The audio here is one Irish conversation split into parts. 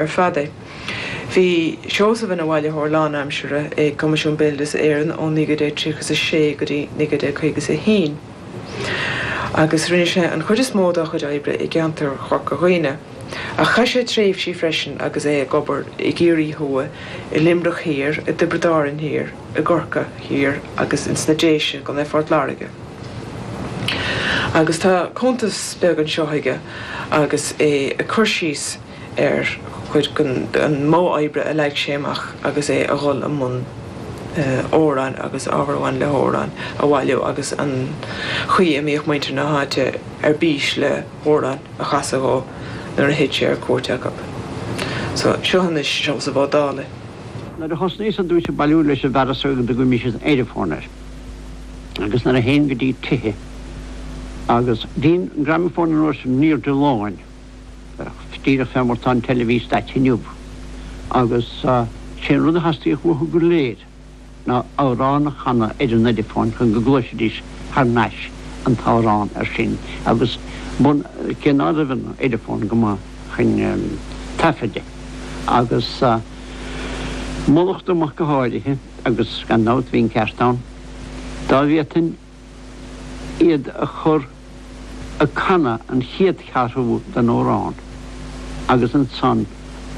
ar fad é. Bhí Seosamh ina bhailitheoir lánaimsire ag Coimisiún Béaloideas Éireann ó 1936 go dtí 1951 agus rinne sé an chuid is mó dá chuid oibre i gceantar Chorca Dhuibhne ach chaith sé tréimhsí freisin agus é ag obair i gCiarraí Thuaidh, i Luimneach Thiar, i dTiobraid Árann Thiar, i gCorcaigh Thiar agus ins na Déise i gContae Phort Láirge. Agus tá cuntas beag anseo aige agus é ag cur síos, ar chuid den mhodh oibre a leag sé amach agus é ag dul i mbun amhráin agus ábhar a bhain le hamhráin a bhailiú agus an chaoi a mbíodh muintir na háite ar bís le hamhráin a chasadh dhó nuair a théadh sé ar cuairt acu. So, seo anois Seosamh Ó Dálaigh. Nuair a thosnaíos ar dtúis ag bailiú leis an bhfearas a dtugaimis an Ediphone air agus nuair a théinn go dtí tithe agus bhí an gramophone an uair sin i ndul i léig, díreach fé mar tá an teilifís daite inniu. Agus sé an rud a theastaíodh uathu go léir ná amhrán a chanadh ar an Ediphone chun go gcloisfidís thar nais an t-amhrán ar sin agus bun, cé ná raibh an Ediphone go maith chun taifead de. Agus mar lacht amach go háirithe agus gan dabht bhí an ceart ann dá bhféadfainn. iad a chur ag canadh an chéad cheathrú den amhrán agus ansan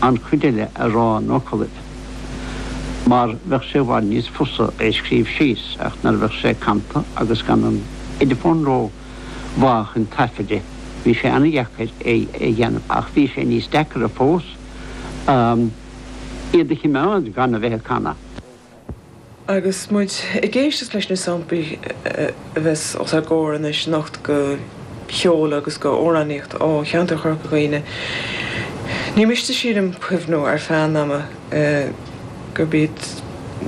an chuid eile a rá ina fhocalaibh mar bheadh sé i bhfad níos fusa é a scríobh síos ach nuair a bheadh sé canta agus gan an ediphone ró mhaith chun taifeadadh bhí sé ana-dheacair é a dheanamh ach bhí sé níos deacaire fós iad a chimeád gan a bheith ag canadh. Agus muid ag éisteacht leis na samplaí a bheas os ár gcomhair anois anocht de cheol agus d'amhránaíocht ó cheantar Chorca Dhuibhne, ní miste sílim cuimhniú ar feadh an ama gurb iad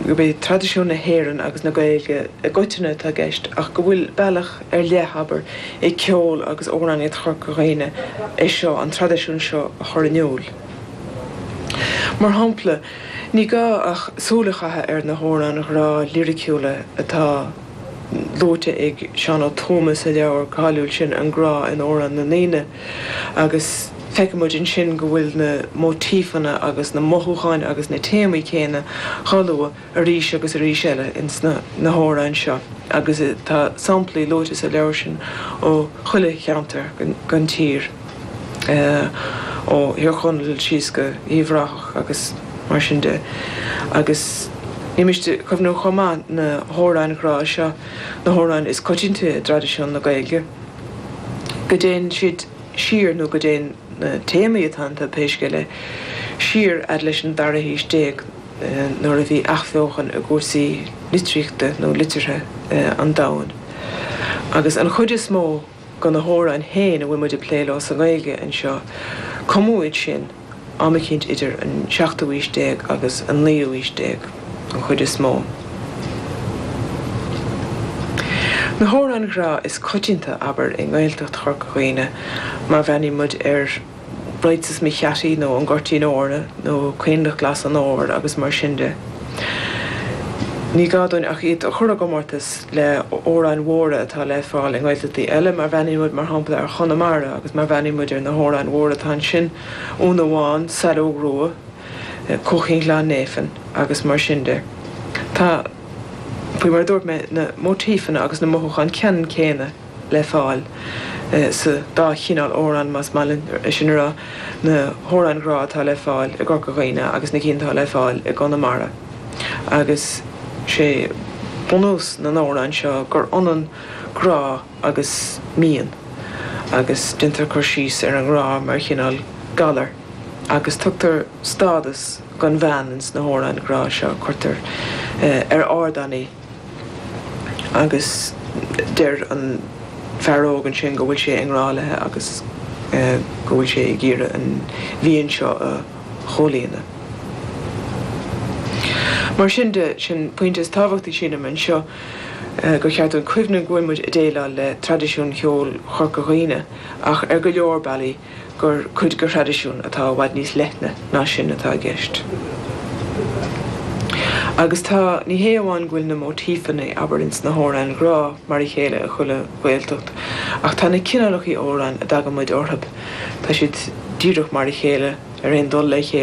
gurb é traidisiún na hÉireann agus na Gaeilge i gcoitinne atá i gceist ach go bhfuil bealach ar leith, abair, ag ceol agus amhránaíocht Chorca Dhuibhne é seo, an traidisiún seo a chur in iúl. Mar shampla. Ní gá ach súil a chaitheamh ar na hamhráin ghrá liriciúla atá luaite ag Seán Ó Tuama sa leabhar cáiliúil sin An Grá in Amhráin na nDaoine agus feicimid ansin go bhfuil na móitífeanna agus na mothúcháin agus na téamaí céanna dhá lua arís agus arís eile ins na hamhráin seo agus tá samplaí luaite sa leabhar sin ó chuile cheantar den tír. ó Thír Chonaill síos go Uíbh Ráthach agus mar sin de. Agus ní miste cuimhniú chomh maith na hamhráin ghrá seo, na hamhráin is coitianta i dtraidisiún na Gaeilge, go dtéann siad siar, nó go dtéann na téamaí atá iontu, pé scéal é, siar fhad leis an dara haois déag nuair a bhí athbheochan i gcúrsaí litríochta nó liteartha an domhain. Agus an chuid is mó. De na hamhráin féin a bhfuil muid ag plé leo sa nGaeilge anseo, cumadh iad sin am eicínt idir an seachtú aois déag agus an naoú aois déag, an chuid is mó. Na hamhráin ghrá is coitianta, abair, i nGaeltacht Chorca Dhuibhne, mar bhreathnaíonn muid ar. Raghadsa is mo Cheaití nó an Goirtín Eornan nó Coinnleach Glas an Fhómhair agus mar sin de. Ní gá dúinn ach iad a chur i gcomórtas le hamhráin mhóra atá le fáil i nGaeltachtaí eile mar bhreathnaíonn muid mar shampla ar Chonamara agus mar bhreathnaíonn muid ar na hamhráin mhóra atá ansin, Úna Bhán, Saileog Rua, Cuaichín Ghleann Néifinn agus mar sin de. Tá, faoi mar a dúirt mé, na móitífeanna agus na mothúcháin ceannann céanna. le fáil sa dá chineál amhráin, más maith linn é sin a rá, na hamhráin ghrá atá le fáil i gCorca Dhuibhne agus na cinn atá le fáil i gConamara. Agus sé bunús na n-amhrán seo gur ionann grá agus mian, agus déantar cur síos ar an ngrá mar chineál galair, agus tugtar stádas don bhean ins na hamhráin ghrá seo, cuirtear ar ardán í. Agus deir an fear óg ansin go bhfuil sé i ngrá leithe agus go bhfuil sé ag iarraidh an mhian seo a chomhlíonadh. Mar sin de, sin pointe tábhachtach sílim anseo gur cheart dúinn cuimhneamh go bhfuil muid ag déileáil le traidisiún cheoil Chorca Dhuibhne ach ar go leor bealaí, gur cuid de thraidisiún atá i bhfad níos leithne ná sin atá i gceist. Agus tá, ní hé amháin go bhfuil na móitífeanna, abair, ins na hamhráin ghrá mar a chéile i chuile Ghaeltacht, ach tá na cineálachaí amhráin a dtagann muid orthub, tá siad díreach mar a chéile, ar aon dul le chéile.